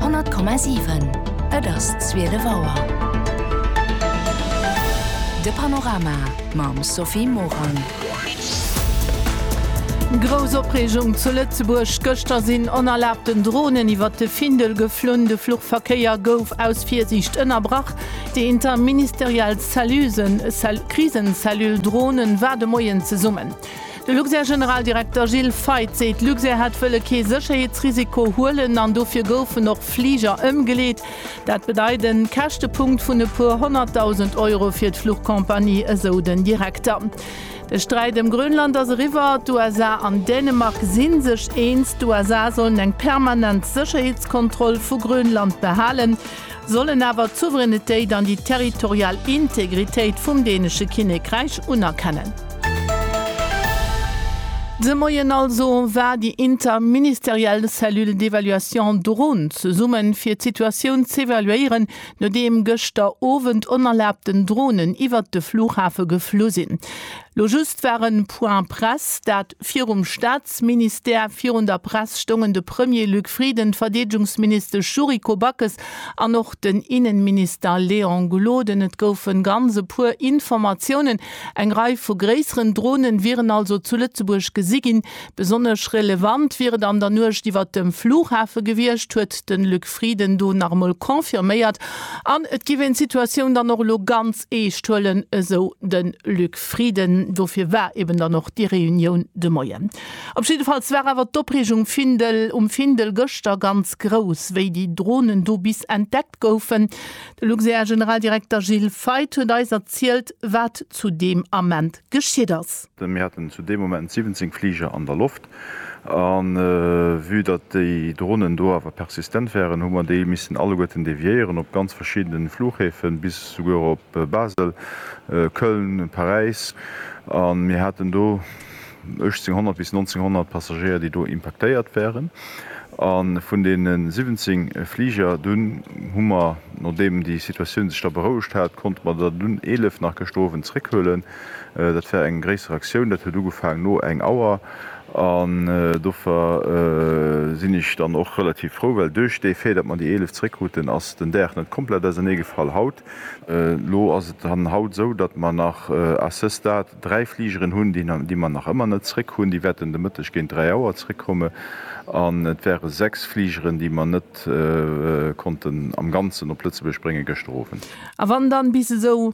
100,7 Et ass 12 Auer. De Panorama mam Sophie Morang. Grouss Opreegung zu Lëtzebuerg, Gëschter sinn onerlaabten Dronen iwwert de Findel geflunn. De Fluchverkéier gouf aus Virsiicht ënnerbrach. Déi interministeriell Cellule, Krisen-Cellule Dronen, war de Moien zesummen. De Luxair-Generaldirekter Gilles Feith seet, Luxair hätt wëlle kee Sécherheetsrisiko huelen an dofir goufen och Fliger ëmgeleet. Dat bedeit e Käschtepunkt vun e puer honnertdausend Euro fir d'Fluchcompagnie, esou den Direkter. De Sträit ëm Grönland ass eriwwer. D'USA an Dänemark si sech eens, d'USA sollen eng permanent Sécherheetskontroll vu Grönland behalen. sollen awer d'Souveränitéit an déi territorial Integritéit vum dänesche Kinnekräich unerkennen. De Moien also war déi interministeriell Cellule d'évaluation drun, zesumme fir d'Situatioun z'evaluéieren, nodeem gëschter Owend onerlaabten Dronen iwwert de Flughafe geflu sinn. Lo just war en Point Presse, dat virum Staatsministère. Virun der Press stoungen de Premier Luc Frieden, d'Verdeedgungsministesch Yuriko Backes an och den Innenminister Léon Gloden. Et goufen ganz e puer Informatiounen. Eng Rei vu gréisseren Dronen wieren also zu Lëtzebuerg gesi ginn, Besonnesch relevant wier et an der Nuecht iwwert dem Flughafe gewiescht, huet de Luc Frieden do nach emol confirméiert. An et géif een d'Situatioun dann och elo ganz eescht huelen, esou de Luc Frieden. Dofir war eben dann och déi Reunioun de Moien. Op jiddefalls war awer d'Opreegung Findel um Findel gëschter ganz grouss, wéi déi Dronen do bis entdeckt goufen. De Luxair-Generaldirekter Gilles Feith huet eis erzielt, wat zu deem Ament geschitt ass. Mir haten zu deem Moment 17 Fliger an der Loft a vue datt déi Dronen do awer persistent waren, hu mer déi missen alleguerten deviéieren op ganz verschiddene Fluchhäfen, bis souguer op Basel, Köln, Paräis. A mir haten do 1800 bis 1900 Passagéier, déi do impaktéiert waren. A vun deene 17 Fliger dunn hu mer, nodeem déi Situatioun sech da berouegt hat, konnte mer der dunn 11 nach gëschter Owend zeréckhuelen. Dat war eng gréisser Aktioun, dat huet ugefaang no eng Auer an dofir sinn ech dann och relativ frou, well duerch dee Fait, datt mer déi 11 zréckkruten, ass den Daach net komplett auserneegefall haut. Elo ass et dann haut esou, datt mer nach à ce stade dräi Fligeren hunn, déi mer nach ëmmer net zréck hunn. Déi wäerten de Mëtteg géint dräi Auer zréckkomme an et ware sechs Fligeren, déi mer net konnten am Ganzen op Lëtzebuerg brénge gëschter Owend. A wann dann bis esou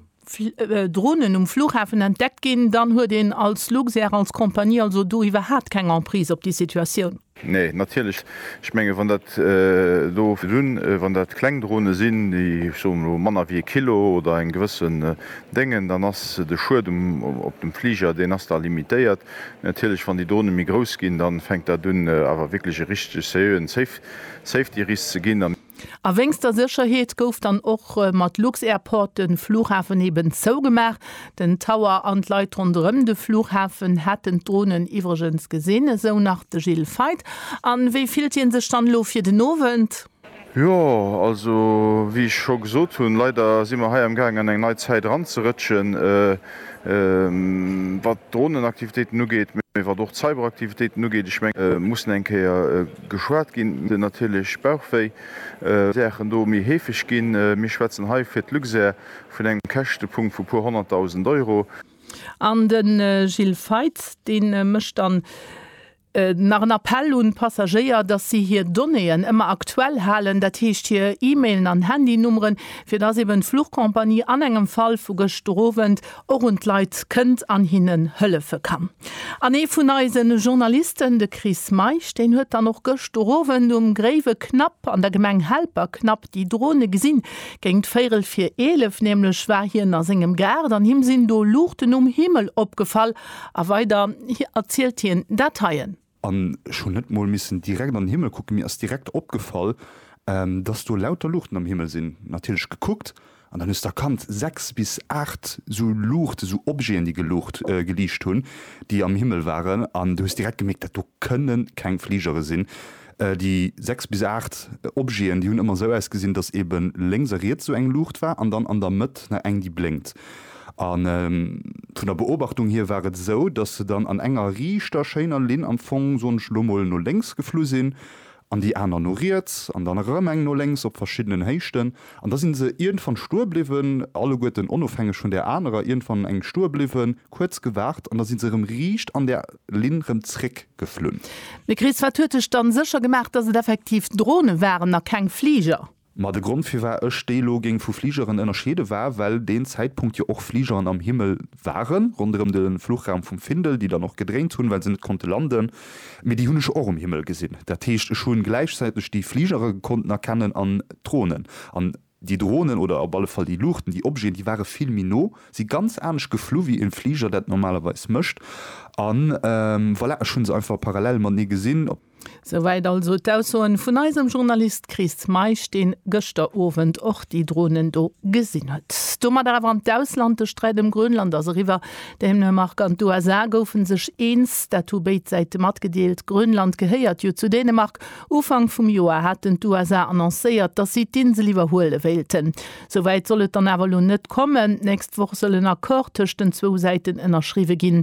Dronen um Flughafen entdeckt ginn, dann huet een als Luxair, als Compagnie also do iwwerhaapt keng Emprise op déi Situatioun. Nee, natierlech. Ech mengen, wann dat do dunn, wann dat kleng Drone sinn, déi, ech soen elo, manner wéi e Kilo oder eng gewëssen Déngen, dann ass de Schued op dem Fliger, deen ass da limitéiert. Mee natierlech, wann déi Drone méi grouss ginn, da fänkt dat un awer wierklech e richtege seriöen Safety-Risk ze ginn. A wéinst der Sécherheet gouf dann och mat lux-Airport de Flughafen eben zougemaach. Den Tower an d'Leit ronderëm de Flughafen hätten d'Dronen iwwregens gesinn, esou nach de Gilles Feith. A wéi fillt hie sech dann elo fir den Owend? Jo, also wéi ech scho gesot hunn, leider si mer hei am gaangen an eng nei Zäit eranzerëtschen, wat d'Dronenaktivitéiten ugeet, mee wat och d'Cyberaktivitéiten ugeet. Ech mengen, mir mussen eng Kéier. Geschwat ginn den natierlech Bauchwéi Ursachen do méi heefeg ginn. Mir schwätzen hei fir d'Luxair vun engem Käschtepunkt vu puer honnertdausend Euro. An de Gilles Feitz, dee mécht dann nach en Appell un d'Passagéier, datt si hir Donnéeën ëmmer aktuell halen, dat heescht hir E-Mailen an Handynummeren, fir datt eben d'Fluchcompagnie an engem Fall vu gëscht Owend och un d'Leit kënnt an hinnen hëllefe kann. An ee vun eise Journalisten, de Chris Meisch, deen huet dann och gëscht Owend um Gréiwe Knapp an der Gemeng Helperknapp déi Drone gesinn. Géingt véirel vir eelef nämlech war hien a sengem Gaart an him sinn do Luuchten um Himmel opgefall a weider erzielt hien dat heien. An ech hunn net mol missen direkt an den Himmel kucken, mir ass direkt opgefall, dass do lauter Luuchten am Himmel sinn. Natierlech gekuckt an dann hues de erkannt, sechs bis aacht esou Luuchten, esou Objeten, déi geluucht, geliicht hunn, déi am Himmel waren. An du hues direkt gemierkt, dat do kënne keng Fligere sinn. Déi sechs bis aacht Objeten, déi hunn ëmmer esou ausgesinn, dass eeben lénks a riets esou eng Luucht war an dann an der Mëtt nach eng, déi blénkt. A vun der Beobachtung hier war et esou, datt se dann an enger riichter, schéiner Linn am Fong, soen ech elo mol, no lénks geflu sinn an déi aner no riets an dann erëm eng no lénks op verschiddenen Héichten. An da si se iergendwann stoe bliwwen, alleguerten onofhängeg vun där anerer, iergendwann eng stoe bliwwen, kuerz gewaart an da si se erëm riicht an där Linn erëm zréckgeflunn. Mme Krees, Wat huet Iech dann sécher gemaach, datt et effektiv Drone waren a keng Fliger? Ma de Grond firwar ech déi elo géing vu Fligeren ënnerscheede war, well deen Zäitpunkt jo och Fligeren am Himmel waren, ronderëm de Fluchraum vum Findel, déi dann och gedréint hunn, well se net konnte landen. Mee déi hunn ech och um Himmel gesinn. Dat heescht, ech hu gläichzäiteg déi Fligere konnten erkennen an d'Dronen. An déi Dronen oder op alle Fall déi Luuchten, déi Objeten, déi ware vill méi no, si ganz anescht geflu wéi e Fliger dat normalerweis mécht. An voilà, ech hu se einfach parallel matenee gesinn. Souwäit also d'Aussoen vun eisem Journalist Chris Meisch, deen gëschter Owend och déi Dronen do gesinn huet. Domat awer an d'Ausland, De Sträit ëm Grönland ass eriwwer. Dänemark an d'USA goufen sech eens, dat hu béid Säite matgedeelt. Grönland gehéiert jo zu Dänemark. Ufank vum Joer haten d'USA annoncéiert, datt si d'Insel iwwerhuele wéilten. Souwäit soll et dann awer elo net kommen. D'nächst Woch soll en Accord tëscht den zwou Säiten ënnerschriwwe ginn.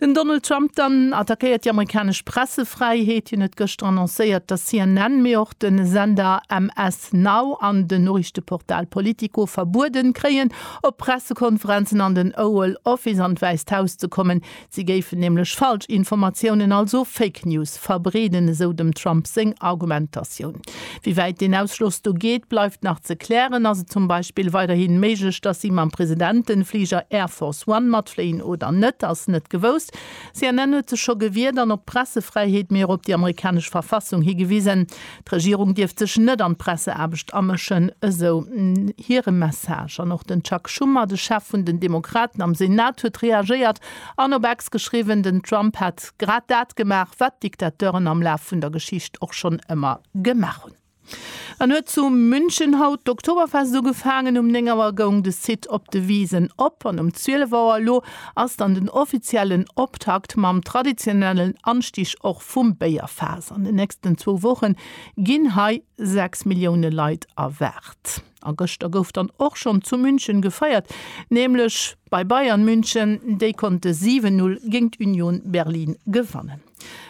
Den Donald Trump dann attackéiert déi amerikanesch Pressefräiheet. Hien huet gëschter annoncéiert, datt CNN, mee och de Sender MS Now an den Noriichteportal Politico verbueden kréien, op Pressekonferenzen an den Oval Office an d'Wäisst Haus ze kommen. Si géifen nämlech Falschinformatiounen, also Fake News, verbreeden, esou dem Trump seng Argumentatioun. Wéi wäit deen Ausschloss do geet, bleift nach ze klären. Ass et zum Beispill weiderhi méiglech, datt si mam Presidentenfliger Air Force One matfléien oder net, ass net gewousst. CNN huet sech scho gewiert an op d'Pressefräiheet, mee och op déi amerikanesch Verfassung higewisen. D'Regierung dierft sech net an d'Presseaarbecht amëschen, esou hire Message. An och den Chuck Schumer, de Chef vun den Demokraten am Senat, huet reagéiert an op X geschriwwen, den Trump hätt. grad dat gemaach, wat d'Diktateuren am Laf vun der Geschicht och schonn ëmmer gemaach hunn. Dann huet zu München haut d'Oktoberfest ugefaangen. Um 9 Auer goung de Site op de Wisen op an um 12 Auer elo ass dann den offiziellen Optakt mam traditionellen Anstig och vum Béierfaass. An den nächsten zwou Woche ginn hei 6 Millioune Leit erwaart. A gëschter gouf dann och schonn zu München gefeiert, nämlech bei Bayern München. Déi konnte 7, 0 géingt Union Berlin gewannen.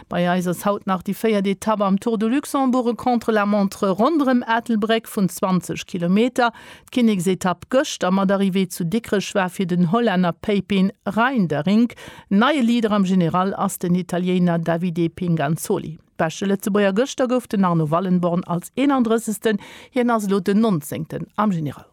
Bei eis ass haut nach déi véiert Etapp am Tour de Luxembourg, e Contre-la-montre ronderëm Ettelbréck vun 20 Kilometer. D'Kinneksetapp gëschter mat Arrivée zu Dikrech war fir den Hollänner Pepijn Reinderink. Neie Leader am General ass den Italiéiner Davide Pinganzoli. Beschte Lëtzebuerger Gëschter gouf den Arno Wallenborn als 31. Hien ass elo den 19. am General.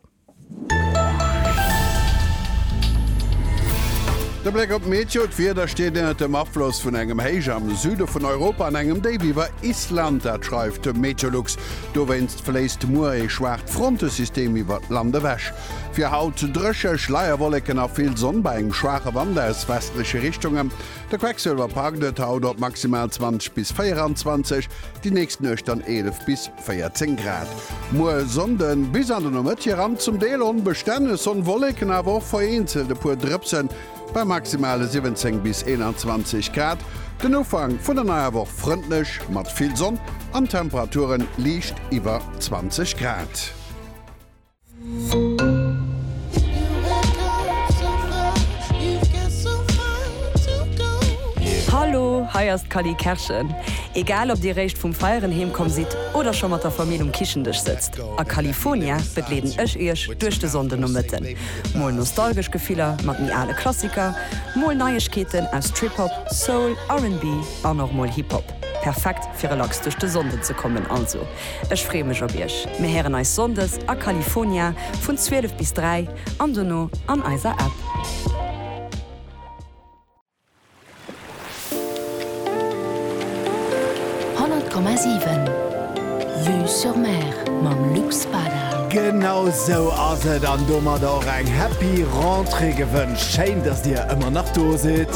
De Bléck op d'Meteo, D'Wieder steet ënnert dem Afloss vun engem Héich am Süde vun Europa an engem Déif iwwer Island. Dat schreift de Meteolux. Dowéinst fléisst muer ee schwaacht Frontesystem iwwert d'Land ewech. Fir haut drécheg, Schleierwolleken a vill Sonn bei engem schwaache Wand aus westleche Richtunge. De Quecksilver packt et haut op maximal 20 bis 24, déi nächst Nuecht dann 11 bis 14 Grad. Muer Sonnden bis an de Nomëtt hiran zum Deel onbestänneg Sonnwolleken, awer och vereenzelt e puer Drëpsen bei maximale 17 bis 21 Grad. Den Ufank vun der neier Woch frëndlech mat vill Sonn an Temperaturen liicht iwwer 20 Grad. Hallo, hei ass d'Cally Kerschen. Egal ob dir réischt vum Feieren heem komm sidd oder scho mat der Famill um Kichendësch sëtzt, a Califonia begleeden ech iech duerch de Sonndenomëtten. Mol nostalgesch Gefiller mat méi ale Klassiker, mol Neiegkeeten aus Trip-Hop, Soul, RB an och mol Hip-Hop. Perfekt fir relax duerch de Sonnden ze kommen also. Ech free mech op iech. Mir héieren eis Sonndes a California vun 12 bis 3 an dono an eiser App. Honnert Komma siwen Vue sur Mer mam Luc Spada. Genau sou ass et an domadder och eng happy Rentrée gewënscht. Schéin dass dir ëmmer nach do sidd.